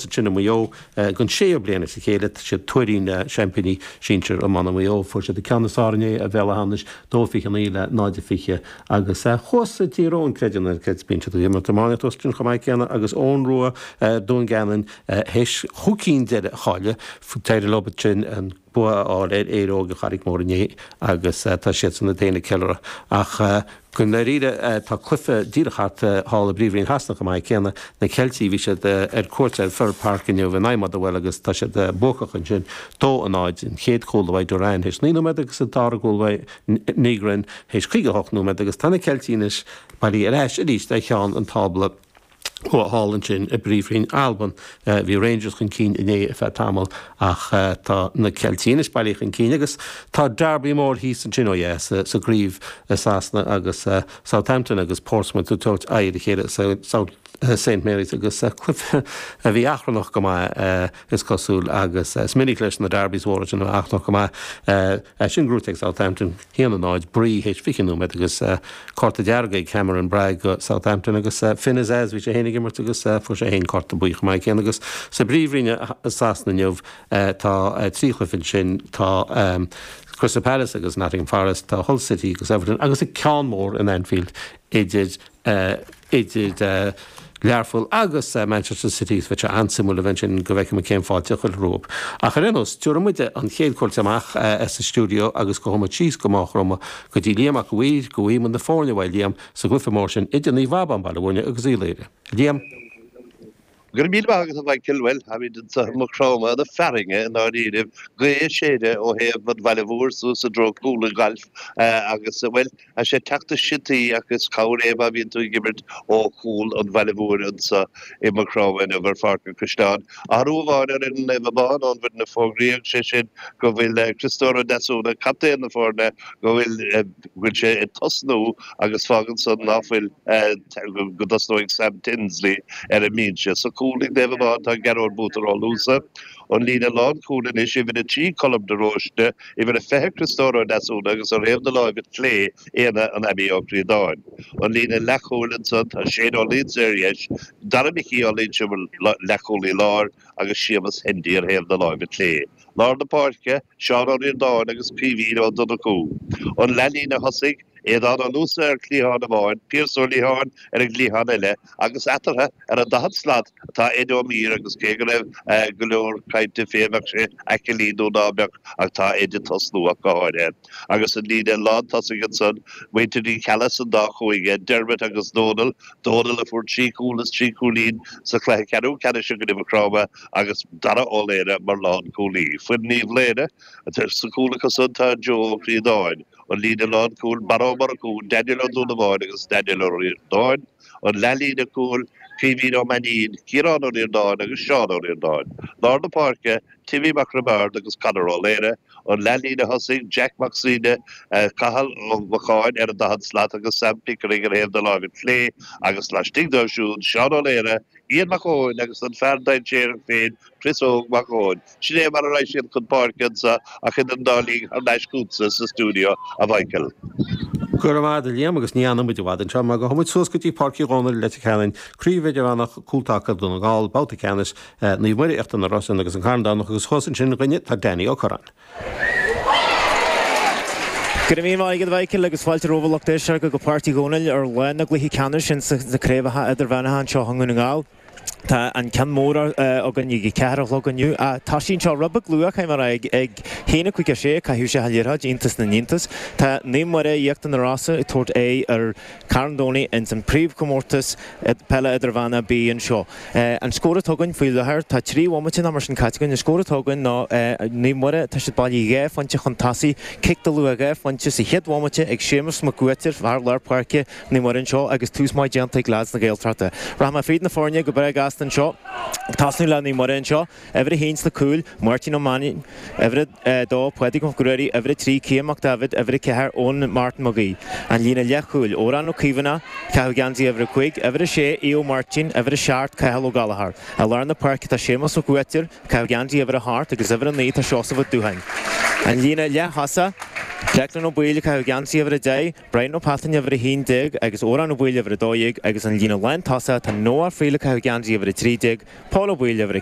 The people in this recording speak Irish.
ansin i Maigh Eo don séú bliain as a chéile. Is iad Tuairín, seaimpíní sinsir iomána Mhaigh Eo. Fuair siad an ceann is fearr ar Bhéal Átha hAmhnais, 2 29 le 0 20, agus thuas i Tír Eoghain creid é nó ná creid bíonn siad ag imirt iománaíocht thuas ansin chomh maith céanna agus Eoin Rua, Dún Geanainn, théis dhóibh cinn deiridh a chailleadh. D'éirigh leo an. bua a fháil ar Éire Óg Charraig Mhór inné agus tá siadsan ag déanamh ceiliúradh. Ach go ndáiríre tá cluiche díreach thart thall i bPríomhroinn Shasana chomh maith céanna, na Ceiltigh. Bhí siad ar cuairt ar Fir Park inniu in aghaidh Motherwell agus tá siad buacach ansin 2-0. An chéad chúl uaidh Duran théis 9 nóiméad agus an dara gcúl uaidh Nygren théis 58 nóiméad agus tá na Ceiltigh anois bailí ar ais arís ar cheann an tábla. thall ansin i bPríomhroinn Alban. Bhí Rangers chun cinn inné ar feadh tamaill ach tá na Ceiltigh anois bailí chun cinn agus tá Derby mór thíos ansin, ó dheas, sa gcraobh i Sasana agus Southampton agus Portsmouth ag tabhairt aghaidh ar a chéile South, Saint Marys agus cluiche a bhí achrannach go maith, is cosúil agus is minic leis na Derbys mhóra sin a bheith achrannach go maith. Sin gnóite ag Southampton. 1-0 Bree théis 20 nóiméad agus cárta dearg ag Cameron Bragg do Southampton agus Finn Azaz bhí sé féin ag imirt agus fuair sé féin cárta buí chomh maith céanna agus sa bpríomhroinn i Sasana inniu tá trí chluiche ansin tá Crystal Palace agus Nottingham Forest tá Hull City agus Everton agus an ceann mór in Anfield idir idir Learpholl agus Manchester City agus beidh sé an-suimiúil a bheith ansin go bhfeicfidh muid cén fháilte a chuirfear rompu. Ach ar aon nós, tabharfaidh muid an chéad chuairt amach as an stiúideo agus gabhfaidh muid síos go Maigh Chromtha go dtí Liam Mac a' Mhaoir, go bhfaighidh muid na foirne uaidh Liam, sa gcluiche mór sin idir Naomh Abán, Baile Mhúirne agus Uíbh Laoire. Liam. Go raibh míle maith agat a Mhichael, bhuel, táimid anso i Maigh Chromtha na fearthainne i ndáiríribh, gaoth ag séideadh ó thaobh an bhaile mhóir suas i dtreo Cúl an Ghailf agus, bhuel, tá sé ag teacht ina siotaí ach is cabhair é má bhíonn tú ag imirt ó chúl an bhaile mhóir anso i Maigh Chromtha inniu ar Pháirc an Chaisleáin. Athrú amháin ar Naomh Abán ón bhfoireann a fógraíodh, sé sin go bhfuil Criostóir Ó Deasúna, captaen na foirne, go bhfuil, go bhfuil sé ag tosnú agus fágann san ná fuil, go dtosnóidh Sam Tinsley ar an mbinse. Sa chúl ag Naomh Abán tá Gearóid Butter Ó Luasa. An líne lánchúil anois, uimhir a trí Colm de Róiste, uimhir a fiche Criostóir Ó Deasúna agus ar thaobh na láimhe clé Éanna an Abbey Ó Críodáin. An líne leathchúil ansan tá Shane Ó Luínse ar dheis, Dara Micí Ó Loinsigh mar leathchúlaí láir agus Séamus Hendy ar thaobh na láimhe clé. Lár na páirce, Seán Ó Ríordáin agus Caoimhín Ó Donnchú. An leath-líne thosaigh, Aodhán Ó Luasa ar chliathán amháin, Pearse Ó Liatháin ar an gcliathán eile agus eatartha ar an daichead slat atá Ed Ó Mír agus cé go raibh go leor cainte fé an mbeadh sé aclaí nó ná beadh ach tá Ed ag tosnú ach go háirithe. Agus an líne lán tosaigh ansan, muintir Uí Cheallaigh san dá chúinne, Diarmuid agus Dónal, Dónal a fuair trí chúl is trí cúilín sa chluiche ceathrú ceannais i gcoinne Macromtha agus Dara Ó Laoire mar lán cúlaí. Foireann Uíbh Laoire, sa chúl acusan tá Joe Ó Críodáin, an líne lán cúl, Barra Ó Murchú, Daniel Ó Donnabháin agus Daniel Ó Riordáin, an leathlíne cúil, Caoimhín Ó Mainín, Ciarán Ó Riordáin agus Seán Ó Riordáin. Lár na páirce, Timmy Mac Roibeárd agus Conor Ó Laoire. An leathlíne thosaigh Jack Mac Suibhne, Cathal Ó Macháin ar an daichead slat agus Sam Pickering ar thaobh na láimhe clé agus laistigh díobh siúd, Seán Ó Laoire, Ian Mac Eoin agus an fear dainséarach féin, Chris Óg Mac Eoin. Sin é mar a raghaidh siad chun páirce anseo ach idir an dá linn thar n-ais chugatsa sa stiúideo, a Mhichael. Go raibh maith agat Liam agus ní fhanann muid i bhfad anseo mar gabhfaidh muid suas go dtí Páirc Uí Dhónaill, Leitir Ceanainn, Craobh Idirmheánach Cúltaca Dhún na nGall, Babhta Ceannais Naomh Muire, Íochtar na Rosann agus Carn Domhnach agus thuas ansin dúinne tá Danny Ó Curráin. Go raibh míle maith agat Mhichael agus fáilte romhaibh lucht éisteachta go Páirc Uí Dhónaill ar lá na gcluichí ceannais ins na craobhacha idirmheánacha anseo i nDún na nGall. Tá an ceann mór againn ag a ceathair a chlog inniu. Tá sí anseo rud beag luath chaitheamh mar ag a haon a cúig a sé a caitheadh isteach an liathróid, iontas na n-iontas. Tá Naomh Muire, Íochtar na Rosann ag tabhairt aghaidh ar Carn Domhnaigh ins an príomhchomórtas peile idirmheánaigh B anseo. An scór atá againn faoi láthair, tá trí bhomaite nó mar sin caite againn. An scór atá againn ná Naomh Muire, tá siad bailí dhá phointe chun tosaigh, cic de luach dhá phointe sa chéad bhomaite ag Séamus Mac Uaitir fear lár páirce Naomh Muire anseo agus tús maith déanta ag leaids na Gaeltachta. Rachaidh mé fríd na foirne go breá gasta anseo, ag tosnú le Naomh Muire anseo. Uimhir a haon sna cúil, Máirtín Ó Mainín, Uimhir a dó, Pádraig Mac Ruairí, Uimhir a trí, Cian Mac Daibhéid, Uimhir a ceathair, Eoin Martin Mag Aoidh, an líne leathchúil, Odhrán Ó Caomhánach, ag caitheamh geansaí Uimhir a cúig, Uimhir a sé, Aodh Ó Máirtín, Uimhir a seacht, Cathal Ó Gallchóir. I lár na páirce tá Séamus Mac Uaitir, ag caitheamh geansaí Uimhir a hocht, agus Uimhir a naoi tá Seosamh Ó Dúcháin, an líne leath-thosaigh, Declan Ó Baoill, ag caitheamh geansaí Uimhir a deich, Brian Ó Peatáin, Uimhir a haon déag, agus Odhrán Ó Baoill, Uimhir a dó dhéag, agus an líne lán-tosaigh, tá Noah Friel, ag caitheamh geansaí Uimhir a trí déag, Paul Ó Baoill, Uimhir a.